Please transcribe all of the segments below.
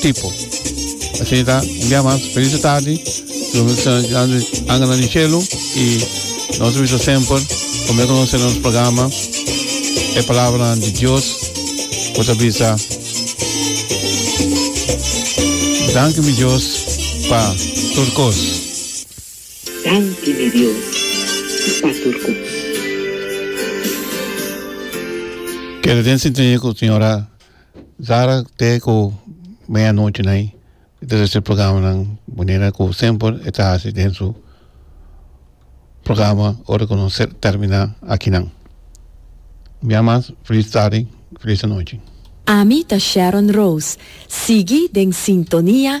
tipo. Asina ta, un bia mas feliz di tardi, lo mester angana di cielo y nos a bisa semper como que nos nos programa e palabra di Dios cu ta bisa Dank u mi Dios pa tur cos. Danki mi Dios pa tur cos. Keda den sintonia cu señora. Zara te ku media nochi na i ta resibí programanan manera ku semper e ta hasi den su programa ora ku nos terminá akinan. Un bia mas felis tardi felis anochi. Ami ta Sharon Rose, sigui den sintonia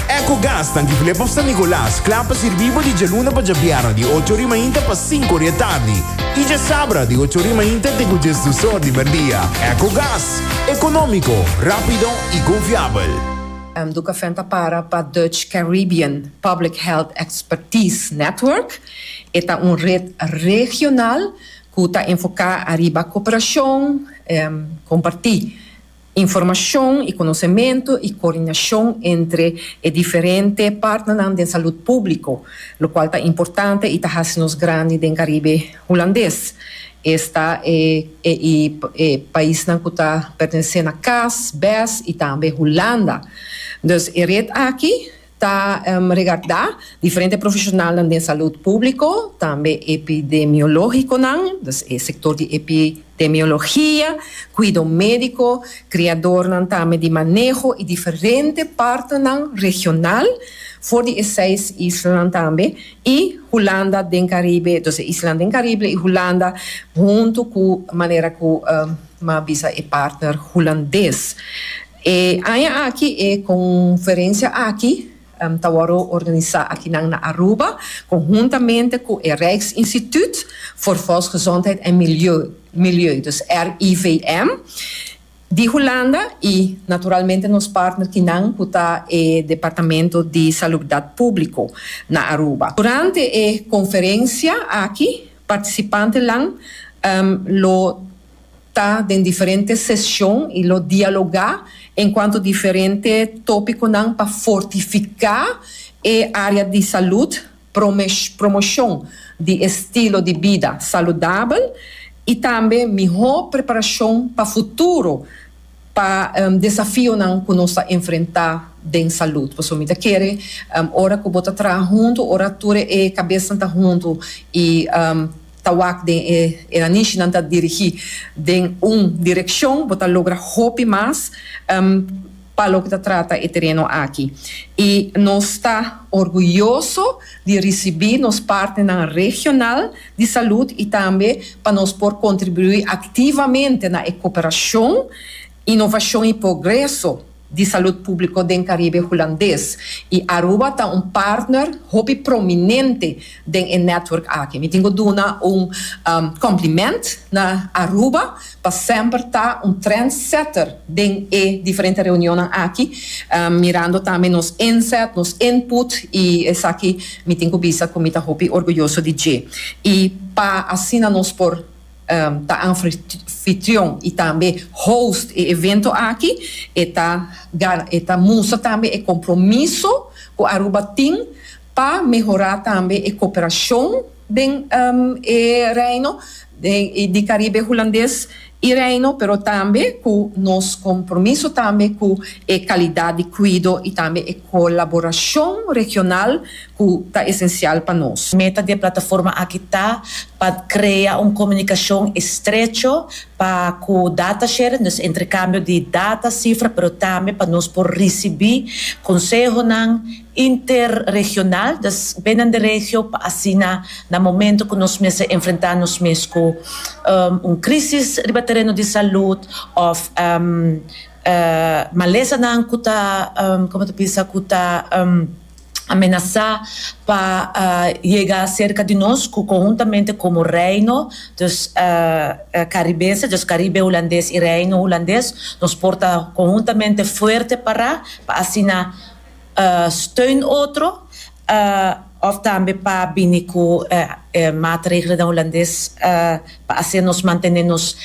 Ecogas tanki Flip of San Nicolas kla pa sirbi bo di djaluna pa djabièrnè di ocho ori mainta pa sinku ori e tardi i djasabra di ocho ori mainta te ku djes dus or di merdia. Ecogas, ekonómiko, rápido i konfiabel. Ducafén ta para pa Dutch Caribbean Public Health Expertise Network. E ta un red regional ku ta enfoká ariba koperashon, kompartí. Informashon i konosementu i koordinashon entre e diferente partnernan den salud públiko, lokual ta importante i ta hasi nos grandi den Karibe Hulandes. Esta e i e paisnan ku ta pertenesé na cas, bes i tambe Hulanda. Dus e ret aki ta regardá diferente profeshonalnan den salud públiko, tambe epidemiológikonan, dus e sektor di epidemiologia, kuido médiko, kriadornan tambe di maneho i diferente partenan regional for di e seis islanan tambe i Hulanda den Karibe, dus e islanan den Karibe i Hulanda huntu ku manera ku mi a bisa e partner hulandes. E aña aki e conferencia aki ta worde organisa akinan na Aruba, conhuntamente cu e Rijksinstituut voor Volksgezondheid en Milieu, dus RIVM, di Hulanda y naturalmente nos partner kinan cu ta e Departamento di Salubdad Publico na Aruba. Durante e conferencia aki participantenan lo. ta den diferente seshon i lo dialogá en kuantu diferente tópikonan pa fortifiká e área di salud, promoshon di estilo di bida saludabel i tambe mihó preparashon pa futuro pa desafionan ku nos ta enfrentá den salud. Pasobra mi ta kere ora ku bo ta traha huntu, ora tur e kabesnan ta huntu i. Ta wak den e Iranishi nan ta dirigi den un direccion bo ta logra hopi mas pa loke ta trata e tereno aki y nos ta orguyoso di ricibi nos partnernan regional di salud y tambe pa nos por contribui activamente na e cooperacion, innovacion y progreso di Salud Público den Caribe Hulandes y Aruba ta un partner hopi prominente den e network aki. Mi tin cu duna un compliment na Aruba pa semper ta un trendsetter den e diferente reunionnan aki, mirando tambe nos inzet, nos input y esaki mi tin cu bisa cu mi ta hopi orguyoso di dje. Y pa asina nos por. ta anfitrion y tambe host e evento aki e ta e ta mustra tambe e compromiso cu Aruba tin pa mehora tambe e cooperacion den e Reino di Caribe Hulandes y Reino pero tambe cu nos compromiso tambe cu e calidad di cuido y tambe e colaboracion regional cu ta esencial pa nos. Meta di e plataforma aki ta pa crea un comunicacion estrecho pa cu data sharing, dus entrecambio di data, cifra, pero tambe pa nos por ricibi consehonan interregional, dus binnen di regio, pa asina na momento cu nos mester enfrenta nos mes cu un crisis riba tereno di salud of malesanan cu ta, como ta bisa, cu ta. amenasá pa yega serka di nos ku konhuntamente komo Reino dos Caribenses, dus Karibe Hulandes i Reino Hulandes, nos por ta konhuntamente fuerte pará pa asina steun otro òf tambe pa bini ku e maatregelnan Hulandes pa hasi nos mantené nos.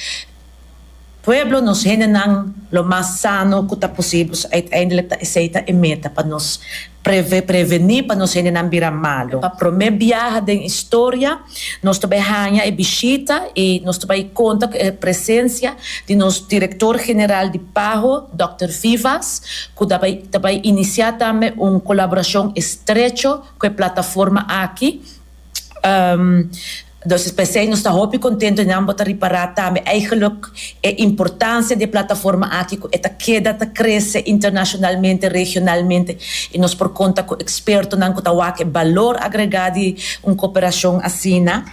Pueblo nos hendenan lo mas sano cu ta posibel, so uiteindelijk ta esey ta e meta pa nos preve, preveni pa nos hendenan bira malo. Pa prome biaha den historia nos ta bay hanja e bishita y nos ta bay conta cu e presencia di nos Director General di PAHO, Dòkter Vivas, cu ta bay ta bay inicia tambe un colaboracion estrecho cu e plataforma aki, Entonces p'esei nos ta hopi contento di nan bo ta ripara tambe eigenlijk e importancia di e plataforma aki cu e ta keda ta crece internacionalmente, regionalmente y nos por conta cu expertonan cu ta wak e balor agrega di un cooperacion asina.